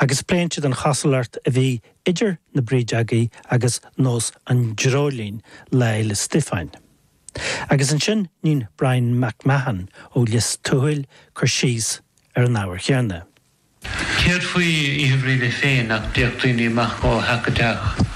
Agus pléann siad an chosúlacht a bhí idir na Brídeogaí agus nós an dreoilín Lae 'le Stiofáin. Agus ansin níonn Bryan Mac Mahon ó Lios Tuathail cur síos ar an ábhar chéanna. Céard faoi Oíche Bhríde féin nach dtéadh daoine amach go h-acadheach?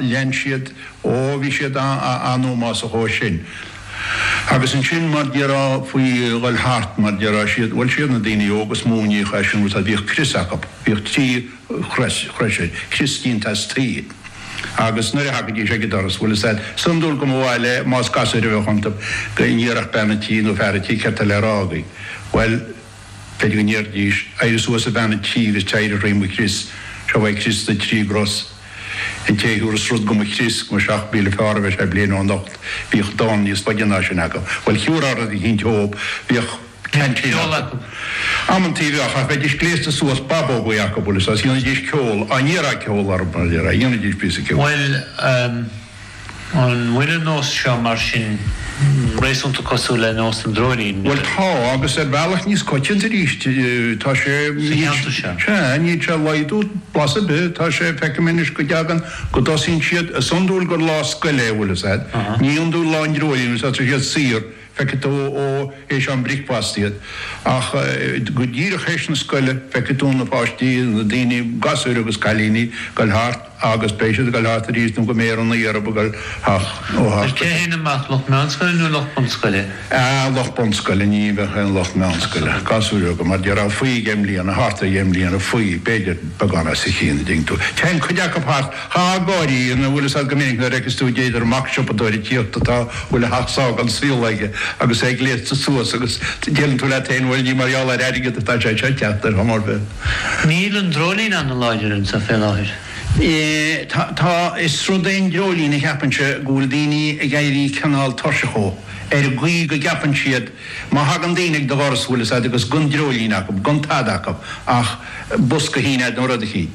lean siad, ó bhí siad ann más a chomh sin. Agus ansin mar déarfá faoi ghoil thart, mar déarfá 's iad, bhuel 's iad na daoine óga is mó a níodh é sin rud tá bhíodh crios acu, bhíodh trí chrois, crois, crios déanta as tuí. Agus nuair a thagaidís ag an doras, bhfuil fhios agat, is iondúil go mba mhaith le, más gasúir a bheadh iontu, go n-iarrfadh bean a' tí nó fear a' tí céard tá le rá agaí. Bhuel. B'fhéidir go ndéarfaidís, 'Éirigh suas a bhean an tí is téirigh thrí mo chrios, seo é crios na dtrí gcros. An té a thiúras rud do mo chrios, go mba seacht míle fearr a bheidh sé bliain ó anocht, bhíodh dán níos faide ná sin acu. Bhuel, shiúr ár rud a shíntí dhóib, bhíodh ceaintín acu. Amantaí a bheadh, ach bheidís gléasta suas babógaí acu, bhfuil fhios agat, dhéanfaidís ceol, dá n-iarrfá ceol orthu, dá n-iarrfá, dhéanfaidís píosa ceoil. Bhuel, An bhfuil an nós seo, mar sin, réasúnta cosúil le nós an dreoilín? Bhuel, tá, agus ar bhealach níos coitianta arís. Tá sé, níl, sa cheantar seo? Sea, níl sé ag laghdú, blas ar bith. Tá sé, feicim anois go dtagann, go dtosaíonn siad, is iondúil gur lá scoile é, bhfuil fhios agat, ní iondúil lá an dreoilín, is ea, tá siad saor, feicfidh tú ó théis am bricfeasta iad. Ach go díreach théis na scoile, feicfidh tú na páistí, na daoine, gasúir agus cailíní, ag goil thart agus beidh siad ag goil thart arís nó go mbeidh ar an aer ab ag goil thart. Cé a théann amach, lucht meánscoile nó lucht bunscoile? Ahh, lucht bunscoile, ní bheadh aon lucht meánscoile, gasúir bheaga, mar déarfá, faoi dheich mbliana, thart ar dheich mbliana, faoi, b'fhéidir, beagán os a chionn, an dtuigeann tú. Téann cuid acu thart. le haghaidh grinn, bhfuil fhios agat go minic nuair a fheiceas tú b'fhéidir mac siopadóra ag tíocht atá bhfuil a sheacht sáith den saol aige agus é gléasta suas agus deireann tú leat féin bhuel ní mar gheall ar airgead atá sé seo ag teacht ar chuma ar bith. Níl an dreoilín an-láidir anseo fé láthair. Tá, tá, is rud é an dreoilín a cheapainnse go bhfuil daoine ag éirí cineál tuirseach dhó, ar an gcaoi go gceapann siad má thagann daoine ag do dhoras bhfuil fhios agat agus gan dreoilín acub, gan tada acub ach bosca shín ead nó rud eicín.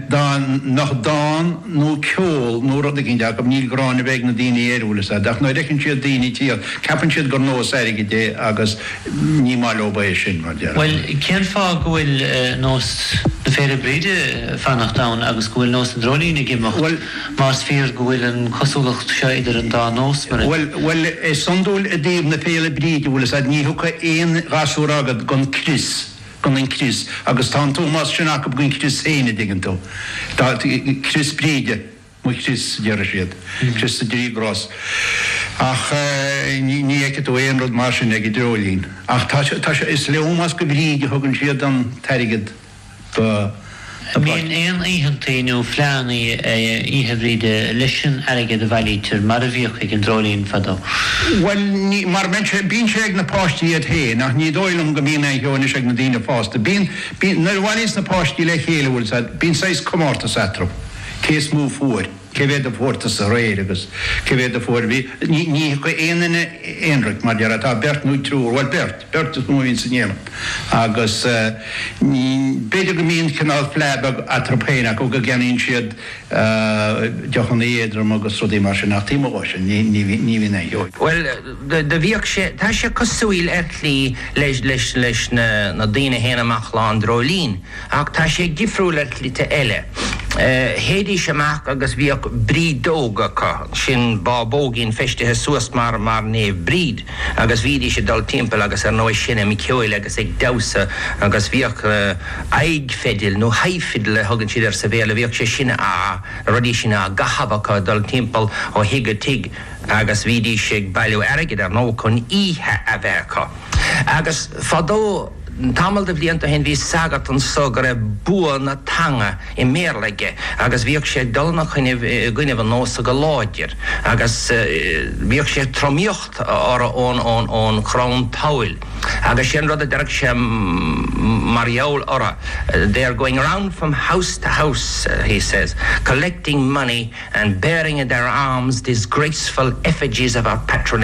Dá mbeadh dán nó ceol nó rud eicínt acub, níl gráin ar bith ag na daoine air, bhfuil fhios agat. Ach nuair a fheiceann siad daoine tíocht, ceapann siad gur nós airgid é agus ní maith leob é sin, mar déarfá. Bhuel, cén fáth go bhfuil nós na Féile Bríde ag fanacht ann agus go bhfuil nós an Dreoilín ag imeacht, más fíor go bhfuil an cosúlacht seo idir an dá nós, mar a. Bhuel, is iondúil i dtaobh na Féile Bríde, bhfuil fhios agat, ní thiocfaidh aon ghasúr agad gan crios. gan an crios, agus tá an t-ómós sin acu don chrios féin, a dtuigeann tú. Tá, crios Bríde, mo chrios, a deireadh siad, crios is a dtrí chros. Ach ní fheicfidh tú aon rud mar sin ag an dreoilín. Ach tá sé, tá sé, is le ómós do Bhríd a thugann siad an t-airgead do. Níl aon oícheantaí nó fleánnaí Oíche Bhríde leis an airgead a bhailítear, mar a bhíodh ag an dreoilín fadó. Bhuel, ní, mar bíonn sé, bíonn sé ag na páistí iad féin, ach ní dóigh liom go mbíonn aon cheo anois ag na daoine fásta. Bíonn, bíonn, nuair a bhailíos na páistí le chéile, bhuil a fhios agat, bíonn saghas comórtas eatarthu, cé is mó a fuair. Cé mhéad a fuair tusa aréir agus cé mhéad a fuair Bhí, ní, ní thiocfaidh aon duine aonraic, mar deir, tá beirt nó triúr, bhuel beirt, beirt is mó a bhíonn in éindí agus ní, b'fhéidir go mbíonn cineál fleá beag eatarthu féin acu go gceannaíonn siad deochanna éadroma agus rudaí mar sin ach taobh amuigh dhó sin, ní, ní, ní bhíonn aon cheo. Bhuel, do bhíodh sé, tá sé cosúil ar shlí leis, leis, leis na, na daoine a théann amach Lá an Dreoilín. Ach tá sé difriúil ar shlite eile. Théidís amach agus bhíodh brídeog acu, sin bábóigín feistithe suas mar, mar Naomh Bríd agus bhídís ag dul timpeall agus ar ndóigh seinm ceoil agus ag damhsa agus bhíodh aghaidh fidil nó high fiddle a thugann siad air sa Bhéarla, bhíodh sé sin a, na rudaí sin á gcaitheamh acu ag dul timpeall ó thigh go tigh agus bhídís ag bailiú airgid ar ndóigh chun oíche a bheith acu. Agus fadó. Tamall de bhlianta ó shin bhí sagart anso go raibh bua na teanga i mBéarla aige agus bhíodh sé ag dul ina choinnibh i gcoinnibh an nósa go láidir agus bhíodh sé ag tromaíocht orthu ón chrann tabhaill agus sé an rud a deireadh sé mar gheall orthu They are going round from house to house, he says, collecting money and bearing in their arms disgraceful effigies of our patron.